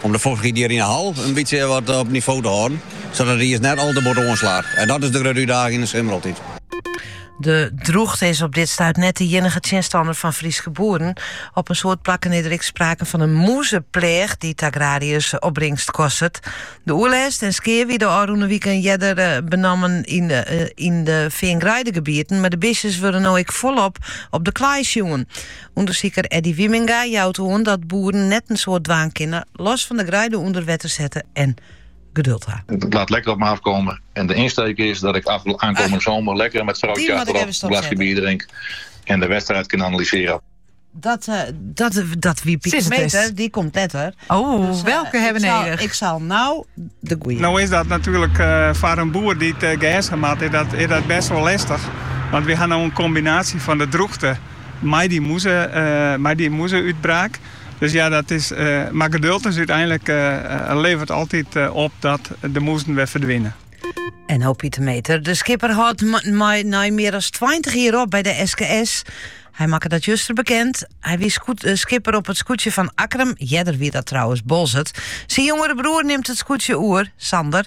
Om de fochtichheid hjir yn de hal in bytsje wat op nivo te hâlden, sadat it iis net al te bot oanslaat. En dat is de grutte útdaging yn de simmer altyd. De drûchte is op dit stuit net de iennige tsjinstanner fan Fryske boeren. Op in soad plakken is der ek sprake fan in mûzepleach dy't de agrariërs opbringst kostet. De oerlêst en skea wiene ôfrûne wiken earder benammen yn de feangreidegebieten, mar de bistjes wurde no ek folop op de klei sjoen. Undersiker Eddy Wieminga jout oan dat boeren net in soad dwaan kinne los fan de greide ûnder wetter sette en geduld ha. It laat lekker op me afkomme en de ynsteek is dat ik aankomende somer lekker met vrouwtje achterop een glasje bier drink en de wedstrijd kan analyseren. Dat, uh, dat, dat wie Pieter Meter, die komt net hoor. Oh, dus, uh, welke hebben nodig? Ik zal nou de goeie. Nou is dat natuurlijk uh, voor een boer die het uh, gas gemaakt is dat, is dat best wel lastig. Want we hebben nou een combinatie van de droogte mei dy mûze-, mei dy mûzeútbraak. Dus ja, dat is, mar geduld is úteinlik levert altyd op dat de mûzen wer ferdwine. En no Pieter Meter. De skipper hâldt mei nei mear as 20 jier op by de SKS. Hy makke dat juster bekend. Hy wie eh, skipper op it skûtsje fan Akkerum. Earder wie dat trouwens Boalsert. Syn jongere broer nimt it skûtsje oer, Sander.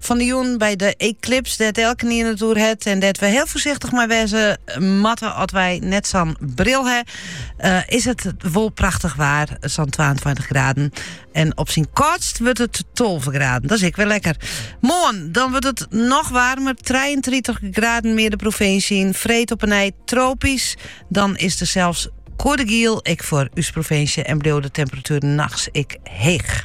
Fan de jûn by de eklips dêr't elkenien it oer hat en dêr't we heel foarsichtich mei wêze moatte as wy net sa'n bril ha, eh, is it wol prachtich waar, sa'n 22 graden. En op syn kâldst wurdt it 12 graden. Dat is ek wol lekker. Moarn, dan wurdt it noch waarmer. 33 graden mear de provinsje yn. Freed opnij tropysk. Dan is der sels koade giel, ek foar ús provinsje en bliuwt de temperatuer nachts ek heech.